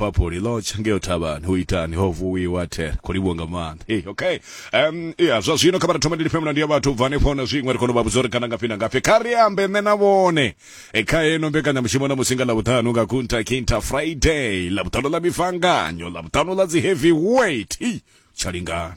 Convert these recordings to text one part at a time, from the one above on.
Liverpool ḽo tsha ngeyo thavhani hu itani ho vuwiwa thera khou livhuwa nga maanḓa hey, okay um ya zwa zwino kha vha thoma ndilifhe mulandu ya vhathu bva hanefho na zwiṅwe ri kona u vha vhudza uri kana ngafhi na ngafhi kha ri ambe nṋe na vhone e kha heno mbekanyamushumo na musi nga ḽavhuṱanu nga kunta kinta friday ḽavhuṱanu ḽa mifanganyo ḽavhuṱanu ḽa dzi heavy weight tsha lingana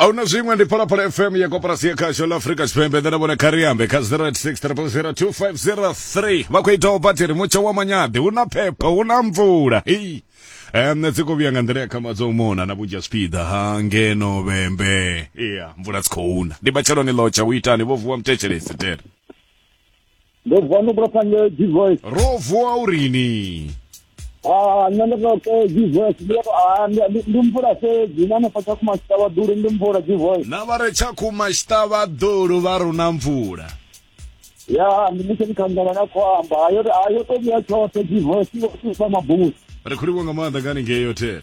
ahuna zwiṅwe ndi phalaphala fm ya koporasi ya khasho la afrika tshipembe nṋe na vhone khariambe kha 086002503 vha khou itaho batiri mutsho wa manyadi hu na phepho hu na mvula Hei. Em, nṋe dzi khou vhuya nga nḓila ya khama dzo mona na vhunzhi ha zwipiḓa ha ngeno vhembe iya mvula dzi khou na ndi matsheloni ḽotsha u itani vho vuwa mutetshelesi tere ndo vuwa ndo bula phange divoice ro vuwa urini Ah, nṋe ndo tou ke divoice ndi to ah ndi- ndi- ndi mvula fhedzi na hanefha tsha kuma tshitavha duli ndi mvula divoice na vha re tsha khuma tshiṱavha ḓulu vha runa mvula ya ndi mutshe ndikhangela na khou amba Ah, yo ah, yo to vhuya tshoṱhe divoice i vho thusa mabusi ri khuliwa nga maanḓa ngani ngeyo tere